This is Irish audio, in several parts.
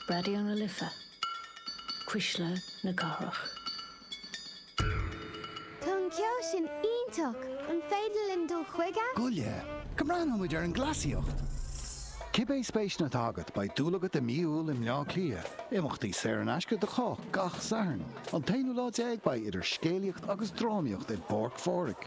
Raidió na Life, Cuisle na Cathrach. Tá an ceol sin iontach! An féidir linn dul chuige? Gabh i leith, go mbreathnóidh muid ar an gcleasaíocht! Cibé spéiseanna atá agat, beidh dúil agat i mí Iúil i mBleá Cliath. Imeachtaí saor in aisce do chách gach Satharn. An t-aonú lá déag beidh idir scéalaíocht agus drámaíocht i bPáirc Phádraig.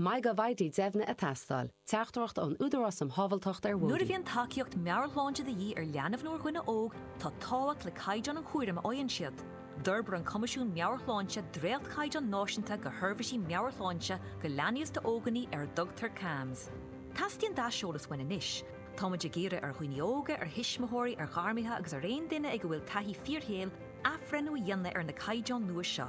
Maith go bhfaighidh deimhne a tástáil. Teachtaireacht ón Údarás um Shábháilteacht ar Bhóithre. Nuair a bhíonn tacaíocht meabhairshláinte de dhíth ar leanbh nó ar dhuine óg, tá tábhacht le caighdeán an chúraim a fhaigheann siad. D'fhorbair an Coimisiún Meabhair-Shláinte dréachtchaighdeáin náisiúnta do sheirbhísí meabhairshláinte do leanaí is d'óganaí ar a dtugtar CAMHS. Teastaíonn d'aiseolas uainn anois. Táimid ag iarraidh ar dhaoine óga, ar thuismitheoirí, ar ghairmithe agus ar aon duine ag a bhfuil taithí fíorshaoil athbhreithniú a dhéanamh ar na caighdeáin nua seo.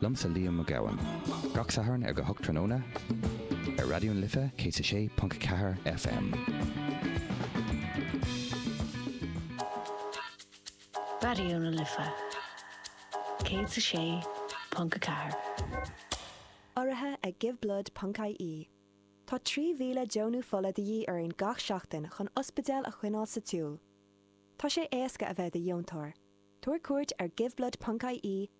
Liomsa Liam Mac Gabhann. Gach Satharn ar a hocht tráthnóna ar Raidió na Life 106.4 FM. Raidió na Life 106.4. Urraithe ag GiveBlood.ie Tá 3,000 deonú fola de dhíth orainn gach seachtain chun ospidéil a choinneáil sa tsiúl. Tá sé éasca a bheith i do dheontóir. Tabhair cuairt ar GiveBlood.ie